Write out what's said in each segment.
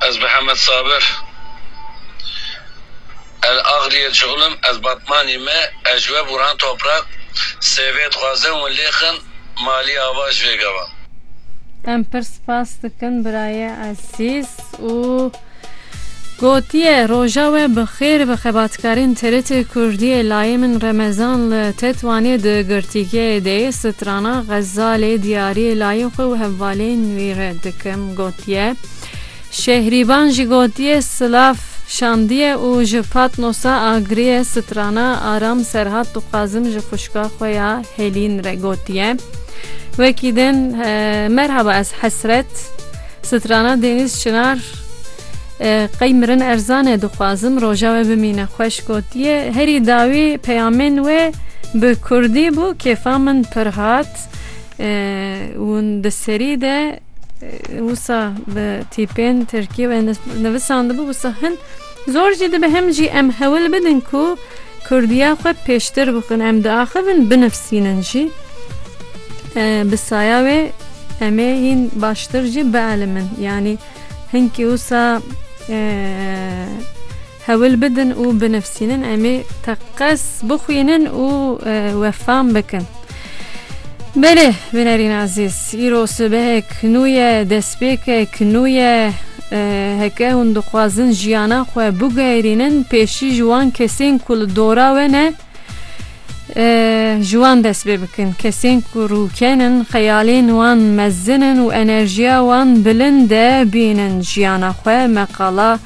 Ez Mihemed Sabir el Axriyê cixul im, ez Batmanî me, ez ji we bûran toprak, sêvê dixwazin win lê xin, malî ava ji vê gava. Em pir spas dikin birayê ezîz û. Gotiye, Roja we bi xêr bi xebatkarên TRT Kurdiyê layê min Remezan li Tetwanê di girtîgehê de yê strana Xezalê diyariyê layê xwe û hevalên wî re dikim gotiye, Şehrîban jî gotiye, Silav şandiye û ji Patnosa agiriye strana Aram Serhat dixwazim ji xwişka xwe ya Helîn re gotiye, wekî din, Merhaba ez Hesret. Strana Deniz Çınar Qey mirin erzan e dixwazim roja we bimîne xweş gotiye herî dawî peyamên wê bi kurdî bû kêfa min pir hat hûn di serî de wisa bi tîpên tirkî wê nivisandibû wisa hin Zor jî dibe hem jî em hewil bidin ku kurdiya xwe pêştir bixin. Em diaxivin binifsînin jî. Bi saya wê em ê hîn baştir jî bielimin. Yanî hinkî wisa hewil bidin û binifsînin em ê teqez bixwînin û wefam bikin. Belê bînerîn ezîz, îro sibehek nû ye, destpêkek nû ye. Heke hûn dixwazin jiyana xwe biguherînin pêşî ji wan kesên ku li dora we ne ji wan dest pê bikin. Kesên ku rûken in, xeyalên wan mezin in û enerjiya wan bilind e bînin jiyana xwe. Me qala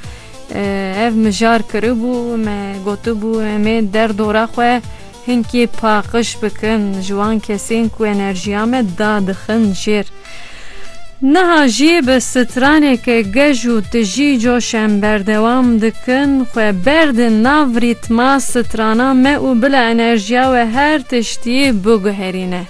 ev mijar kiribû, me gotibû em ê derdora xwe, Hinkî paqij bikin ji wan kesên ku enerjiya me da dixin jêr. Niha jî bi straneke gej û tijî coş em berdewam dikin xwe berdin nav rîtma strana me û bila enerjiya we her tiştî biguherîne.